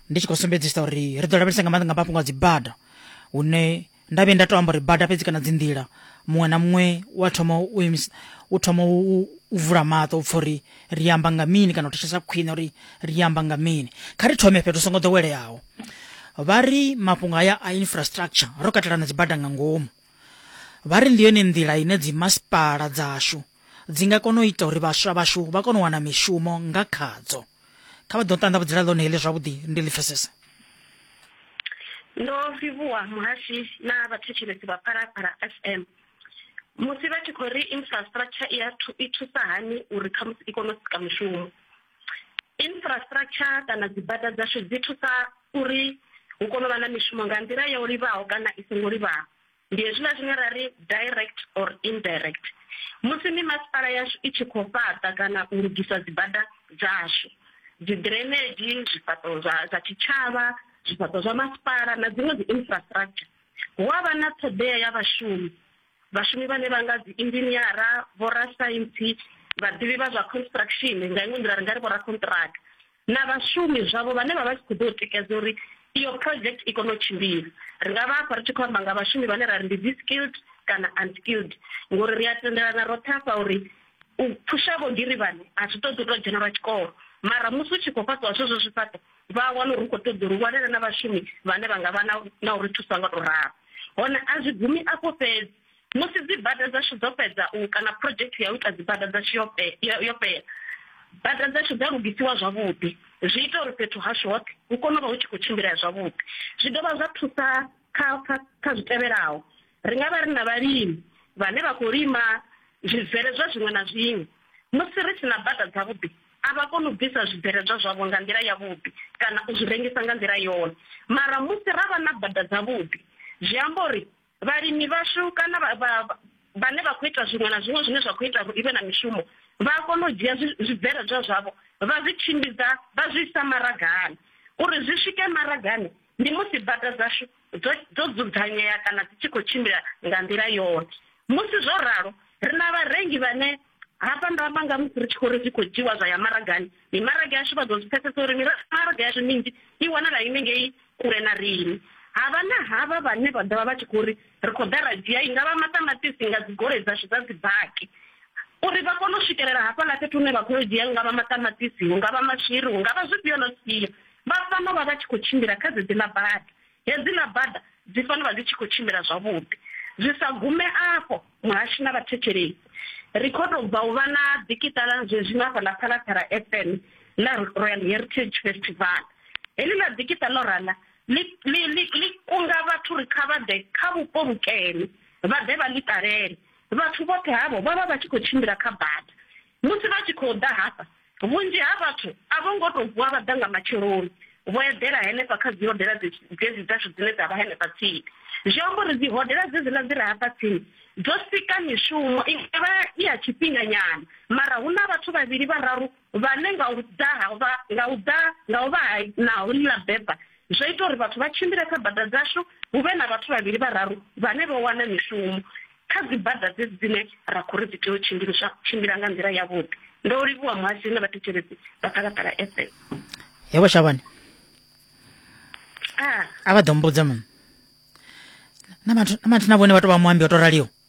ndi tshi khou sumbedzisa uri ri ḓo lavhelesa nga maanḓa nga mafhungo a dzibada hune nda vhuye nda to amba uri bada fhedzi kana dzinḓila muṅwe na muṅwe wa thoma u imisa u thoma u vula maṱo u pfha uri ri amba nga mini kana u thetshelesa khwine uri ri amba nga mini kha ri thome fhethu songo ḓoweleaho vha ri mafhungo haya a infrastructure ro katela na dzibada nga ngomu vha ri ndi yone nḓila ine dzimasipala dzashu dzi nga kona u ita uri vhaswa vhashu vha kone u wana mishumo nga khadzo kha vha ḓo ṱanḓavhudzela ḽone heḽi zwavhuḓi ndi ḽi pfesese ndo livhuwa muhashi na vhathetshelesi vha phalaphala fm musi vha tshi khou ri infrastructure i thusa hani uri khamusi i kone u sika mishumo Infrastructure kana dzi bada dzashu dzi thusa uri hu kone u vha na mishumo nga nḓila yo livhaho kana i songo livhaho ndi hezwiḽa zwine ra ri direct or indirect musi mi masipala yashu i tshi khou fhaṱa kana u lugisa dzi bada dzashu dzi drainage zwifhaṱo zwa zwa tshitshavha zwifhaṱo zwa masipala na dziṅwe dzi infrastructure hu avha na ṱhoḓea ya vhashumi Vhashumi vhane vha nga dzi inzhiniara, vhorasaintsi, vhaḓivhi vha zwa construction nga iṅwe nḓila ri nga ri vhorakhonṱiraka na vhashumi zwavho vhane vha vha tshi khou ḓo tikedza uri iyo project i kone u tshimbila. Ri nga vha afha ri tshi khou amba nga vhashumi vhane ra ri ndi dzi skilled kana unskilled ngori ri a tendelana roṱhe afha uri u phusha vhogirivhani a zwi ṱoḓi u tou dzhena lwa tshikolo mara musi u tshi khou fhaṱiwa zwezwo zwifhaṱo vha wana uri ri khou ṱoḓa uri vhonane na vhashumi vhane vha nga vha na uri thusa nga to ralo hone a zwi gumi afho fhedzi musi dzibada dzashu dzo fhedza u kana project ya u ita dzibada dzashu yo yo fhela bada dzashu dza lugisiwa zwavhuḓi zwi ita uri fhethu hashu hoṱhe hu kone u vha hu tshi khou tshimbilea zwavhuḓi zwi dovha zwa thusa kha kha kha zwi tevhelaho ri nga vha ri na vhalimi vhane vha khou lima zwibveledzwa zwiṅwe na zwiṅwe musi ri si na bada dzavhuḓi A vha koni u bvisa zwibveledzwa zwavho nga nḓila yavhuḓi kana u zwi rengisa nga nḓila yone. Mara musi ra vha na bada dzavhuḓi, zwi amba uri vhalimi vhashu kana vha, vha, vhane vha khou ita zwiṅwe na zwiṅwe zwine zwa khou ita uri i vhe na mishumo vha a kona u dzhia zwibveledzwa zwavho vha zwi tshimbidza vha zwi isa maragani. Uri zwi swike maragani ndi musi bada dzashu dzo, dzo dzudzanyea kana dzi tshi khou tshimbila nga nḓila yone. Musi zwo ralo, ri na vharengi vhane Hafha ndo amba nga musi ri tshi khou ri zwi khou dzhiwa zwa ya maragani. Mimaraga yashu vha ḓo zwi pfesesa uri mimaraga yashu minzhi i wanala ine ngei kule na riṋe. Havha na havha vhane vha ḓovha vha tshi khou ri ri khou ḓa ra dzhia i nga vha maṱamaṱisi nga dzigoloi dzashu dza dzibaki uri vha kone u swikelela hafhaḽa fhethu hune vha khou yo dzhia nga vha maṱamaṱisi hu nga vha maswiri hu nga vha zwifhio na zwifhio vha fanela u vha vha tshi khou tshimbila kha dzedzi ḽa bada Hedziḽa bada dzi fanela u vha dzi tshi khou tshimbila zwavhuḓi. Zwi sa gume afho, muhashi na vhathetshelesi ri khou tou bva u vha na ḓikiṱala zwezwino hafha ḽa Phalaphala FM ḽa Royal Heritage Festival. Heḽiḽa ḓikiṱa ḽo rala ḽi, ḽi, ḽi, ḽi kunga vhathu uri kha vha ḓe kha vhupo vhukene, vha ḓe vha ḽi ṱalele. Vhathu vhoṱhe havho vha vha vha tshi khou tshimbila kha bada. Musi vha tshi khou ḓa hafha, Vhunzhi ha vhathu a vho ngo tou vuwa vha ḓa nga matsheloni vho eḓela henefha kha dzihodela dzedzi dzashu dzine dza vha henefha tsini. Zwi amba uri dzihodela dzedziḽa dzi re hafha tsini dzo sika mishumo i nga vha i ya tshifhinganyana, mara hu na vhathu vhavhili vhararu vhane nga u ḓa ha nga u ḓa nga u vha ha na houḽa beba Zwo ita uri vhathu vha tshimbile kha bada dzashu, hu vhe na vhathu vhavhili vhararu vhane vho wana mishumo kha dzibada dzedzi dzine ra khou ri dzi tea u tshimbiliswa tshimbila nga nḓila yavhuḓi. Ndo livhuwa muhasho na vhathetshelesi vha Phalaphala FM. Yebo Shabane. Ah. A vha ḓo mbudza mini? Na vhathu na vhone vha tou vha muambi o tou raliho.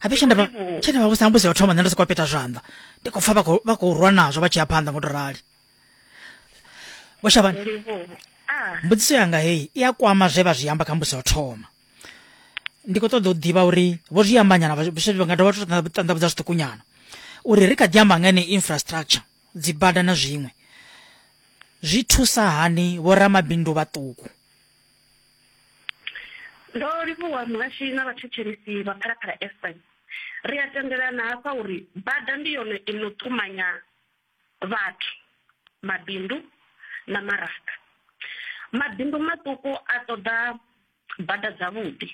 habe tshe ndavha tshe ndavha vhusa mbusi ya thoma nṋe ndo soko peta zwanḓa ndi khou pfa vha khou vha khou rwa nazwo vha tshi ya phanḓa ngo to rali vho shavhana ah. mbudziso yanga heyi i a kwama zwe vha zwi amba kha mbusi ya thoma ndi khou ṱoḓa u ḓivha uri vho zwi ambanyana vha nga dovha to ṱanḓavhudza zwiṱukunyana uri ri kha ḓi amba ngani infrastructure dzi bada na zwiṅwe zwi thusa hani vho ramabindu vhaṱuku Ndo livhuwa muhashi na vhathetshelesi vha Phalaphala FM. Ri a tendelana hafha uri bada ndi yone i no ṱumanya vhathu, mabindu na maraga. Mabindu maṱuku a ṱoḓa bada dzavhuḓi.